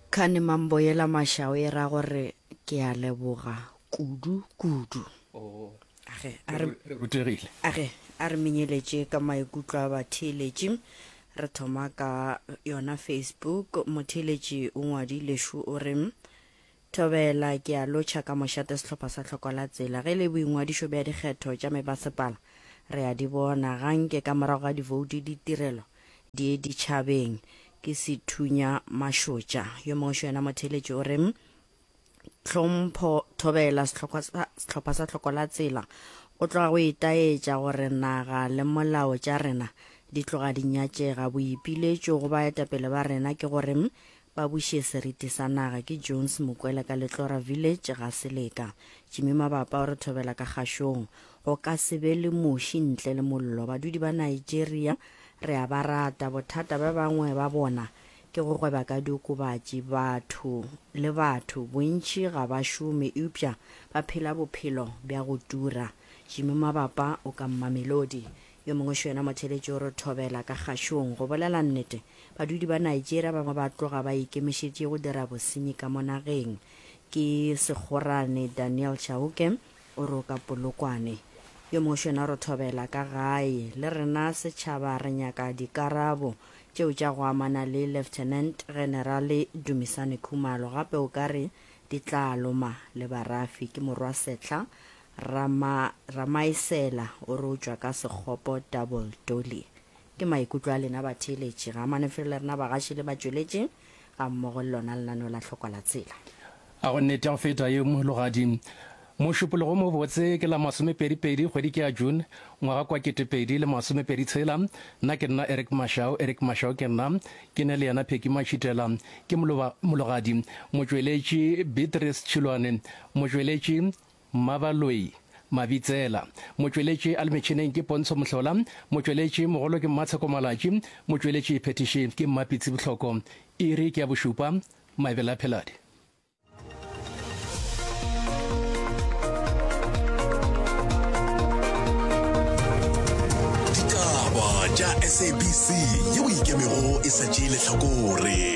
Kane mambo yela mašao e ra gore ke a leboga kudu kudu. Age a re Re rutegile. age a re menyeletše ka maikutlo a batheeletši. Re thoma ka yona Facebook. Motheeletši o ngwadile šo o re, Thobela, Ke a lotšha ka mošate sehlopha sa Tlhoko la Tsela. Ge le boingwadišo bja dikgetho tša mebasepala re a di bona ga nke ka morago ga divouti ditirelo di ye ditšhabeng. Ke Sethunya Mašotša. Yo mongwe šo yena motheeletši o re, Tlhompho, Thobela, sehlopha sa, sehlopha sa Tlhoko la Tsela go tloga go itaetša gore naga le molao tša rena di tloga di nyatšega. Boipiletšo go baetapele ba rena ke gore Ba buše seriti sa naga ke Jones Mokwele ka Letlora Village ga Seleka. Jimmy Mabapa o re thobela ka kgašong. Go ka se be le muši ntle le mollo. Badudi ba Nigeria re a ba rata. Bothata ba bangwe ba bona ke go gweba ka diokobatši. Batho le batho, bontši ga ba šome eupša ba phela bophelo bja go tura. Jimmy Mabapa o ka Mamelodi. Yo mongwe xo yena motheletši o re thobela ka kgašong. Go bolela nnete, badudi ba Nigeria ba bangwe ba tloga ba ikemišetše go dira bosenyi ka mo nageng. Ke segorane Daniel Chauke o re o ka Polokwane. Yo mongwe xo yena o re thobela ka gae. Le rena setšhaba re nyaka dikarabo tšeo tša go amana le Lieutenant Generale Dumisani Khumalo. Gape o ka re di tla loma le Barafi. Ke morwa Setla Rama, Ramaesela o re o tšwa ka Sekgopo Double Dolly. Ke maikutlo a lena batheeletši ga manefelo le rena bagaši le batšweletši ga mmogo le lona lenaneo la Hlokwa la Tsela. A go nnete ya go feta ye, Mologadi? Mošupologo o mobotse ke la masomepedi pedi kgwedi ke ya June ngwaga kwa kete pedi le masomepedi tshela. Nna ke nna Eric Mashau, Eric Mashau ke nna. Ke ne le yena Pheki Matšhitela. Ke Moloba, Mologadi. Motšweletši, Beatrice Tšhilwane. Motšweletši, Mmabaloi, Mabitsela, motšweletši a le metšhineng ke Pontsho Mohlola, motšweletši mogolo ke Mmatsheko Malatši, motšweletši phethiši ke Mmapitsi Bohloko. Iri ke ya bošupa, Maebele a Pheladi. Ditaba tša SABC yeo e ikemego e sa tšee lehlakore.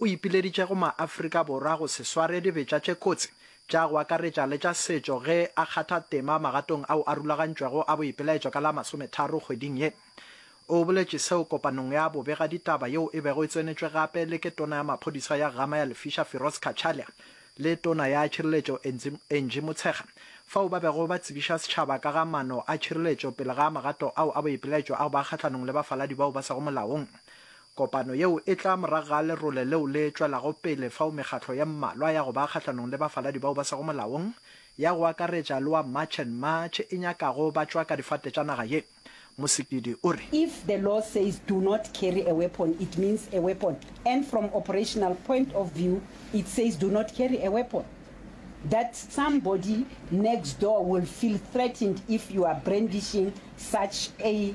o ipileditše go maAfrika Borwa go se sware dibetša tše kotsi, tša go akaretša le tša setšo ge a kgatha tema magatong ao a rulagantšwego a boipelaetšo ka la masometharo kgweding ye. O boletše seo kopanong ya bobegaditaba yeo e bego e tsenetšwe gape le ke tona ya maphodisa ya Ghama ya Lefisha Firoz Cachalia le tona ya tšhireletšo Angie Motshekga fao ba bego ba tsebiša setšhaba ka ga mano a tšhireletšo pele ga magato ao a boipelaetšo a go ba kgahlanong le bafaladi bao ba sego molaong Kopano yeo e tla morago ga lerole leo le tšwelago pele fao mekgatlo ye mmalwa ya go ba kgahlanong le bafaladi bao ba sego molaong, ya go akaretša le wa March and March, e nyakago ba tšwa ka difate tša naga ye. Mosikidi o re. If the law says do not carry a weapon it means a weapon and from operational point of view it says do not carry a weapon that somebody next door will feel threatened if you are brandishing such a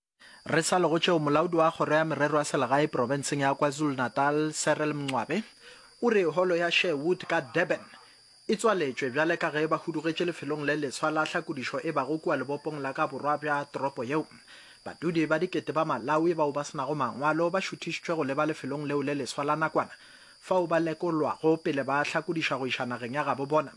Re sa le go tšeo, molaodi wa Kgoro ya Merero ya Selegae profenseng ya KwaZulu-Natal, Cyril Mncwabe, o re Holo ya Sherwood ka Durban e tswaletšwe bjale ka ge ba hudugetše lefelong le leswa la hlakodišo e bago kua lebopong la ka borwa bja toropo yeo. Badudi ba dikete ba Malawi bao ba se nago mangwalo ba šuthišitšwe go leba lefelong leo le leswa la nakwana fao ba lekolwago pele ba hlakodišwa go iša nageng ya gabo bona.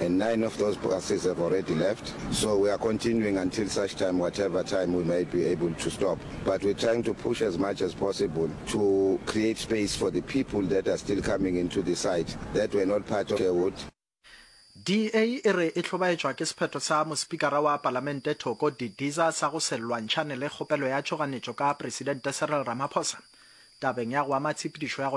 and nine of those buses have already left, so we are continuing until such time whatever time we may be able to stop, but we're trying to push as much as possible to create space for the people that are still coming into the site that were not part of Sherwood. DA e re e hlobaetšwa ke sephetho sa Mospikara wa Palamente Thoko Didiza sa go se lwantšhane le kgopelo ya tšhoganetšo ka Presidente Cyril Ramaphosa tabeng ya go ama tshepedišo ya go